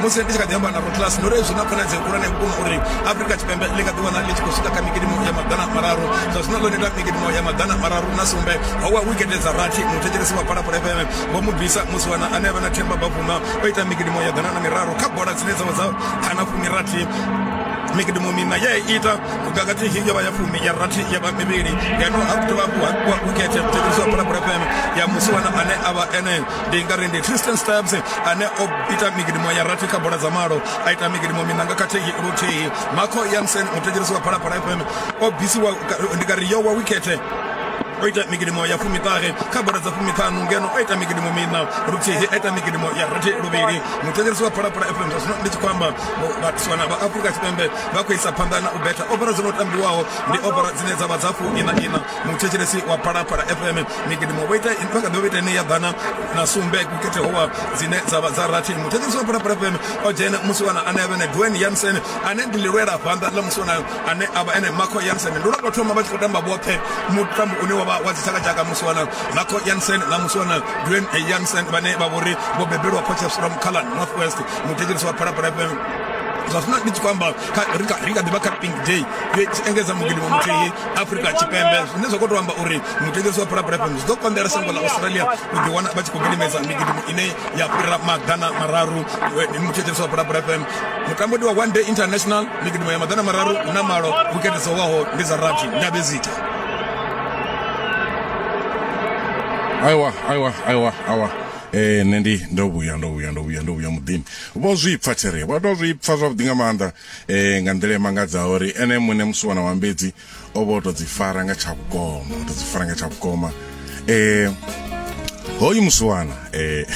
musi ndi tshi kha ḓi amba na rotlas ndo ri zwi na khonadzeo khulwane vhukuma uri afrika tshipembe ḽi nga ḓiwana ḽi tshi khou swika kha mikidimo ya maḓana mararu zwa zwino ḽo neta mikidimo ya maḓana mararu na sumbe ho wa wikete dza rathi muthetshelesi wa phalaphala fm vho mu bvisa musi wana ane a vha na themba bavuma o ita mikidimo ya ḓana na miraru kha bola dzine dza vha dza khana fumirathi mikidimo mina ye ita vhukakati hi yo vha ya fumi ya rathi ya vha mivhili ngeno ha dovha hafhu ha wikete muthetshelesi wa phalaphala fm ya musi wana ane a vha ene ndi nga ri ndi tristan stabs ane o ita migidimo ya rathi kha bola dza malo a ita migidimo minanga khathihi luthihi marco yansen muthetshirisi wa phalaphala fm o bvisiwa ndi nga ri yo wa wikete o ita migidimo ya fumiṱahe kha bola dza fumiṱhanu ngeno o ita migidimo mina luthihi a ita migidimo ya rathi luvhili muthetshelesi wa phalaphala fm zwa zwino ndi tshi khou amba vhatiswana vha afurika tshipembe vha khou isa phanḓa na u betha ofara dzo no tambiwaho ndi ofara dzine dza vha dza fu ina ina muthetshelesi wa phalaphala fm migidimo vho ita vha kha ḓi vha ita ine ya ḓana na sumbe kukhethe howa dzine dza vha dza rathi muthetshelesi wa phalaphala fm o dzhena musiwana ane avha ene duen yansen ane ndi lilwela vhanḓa ḽa musiwanayo ane avha ene marco yansen ndi lwa tou thoma vha tshi khou tamba vhoṱhe mutambo une wa vha wa dzitshakatshaka musiwana marco yansen na musiwana duen yansen vhane vha vhori vho bebelwa phochesura mukhalan north west muthetshelesi wa phalaphala fm zwa zwino ndi tshi khou amba ri kha ḓi vha kha pink day yo engedza mugidimo muthihi afrika tshipembe zwine zwa khou tou amba uri mutengisi wa phulaphula fm zwi ḓo konḓela shango la australia u ḓi wana vha tshi khou gidimedza migidimu ine ya fhira maḓana mararu eh, mutshetshelesi wa phulaphula fm mutambodi wa one day international migidimu ya maḓana mararu hu na malo wikende dzo waho ndi dza rathi ndabezita aiwa aiwa aiwa aiwa eh nṋe ndi ndo vhuya ndo vhuya ndo vhuya ndo vhuya muḓini vho zwi pfa there vha tou zwi pfa zwavhuḓi nga maanḓa e, nga nḓila i mangadzaho uri ene muṋe musiwana wa mbedzi o vha o tou dzi fara nga tsha vhukoma o tou dzi fara nga tsha vhukoma e, hoyu musiwana e,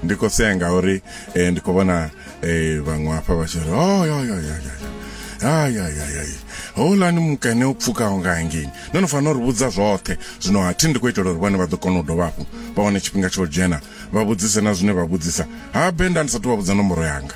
ndi khou sea ngauri e, ndi khou vhona e, vhaṅwe hafha vha tshi ri oyoyoyoyo ayayayay houlani mukene o pfukaho nga hangei no no fanela uri vhudza zwoṱhe zwino ha thi ndi khou itela uri vhone vha ḓo kona u dovha hafhu vha wane tshifhinga tsha u dzhena vha vhudzise na zwine vha vhudzisa ha benda ndi sa tou vha vhudza nomboro yanga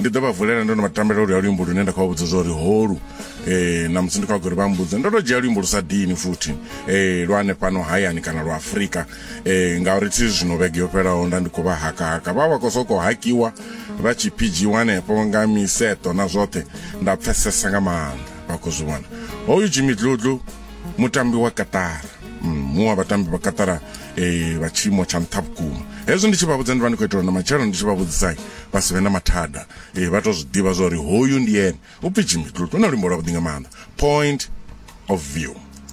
ndi ḓo vha vulela ndo no vha tambela oluya luimbo lune nda khou vha vhudza zwa uri holu um na musi ndi khou vha gori vha mbudza ndo to dzhia luimbo lu sa dini futhi um lwa hanefhano hayani kana lwa afurika um ngauri thi zwino vhege yo fhelaho nda ndi khou vha hakahaka vha vha khou sokou hakiwa vha tshi phidzhiwa hanefho nga miseto na zwoṱhe nda pfesesa nga maanḓa vha khou zwi vhona hoyu jimmy dludlu mutambi wa katara mm, muṅwe wa vhatambi vha katara um vha tshiimo tsha nṱha vhukuma hezwi ndi tshi vha vhudza ndi vha ndi khou itela na matshelo ndi tshi vha vhudzisai vha si vhe na mathada ee vha to zwi ḓivha zwa uri hoyu ndi ene upfhi jimmy tlutlu na luimbo lwavhuḓi nga maanḓa point of view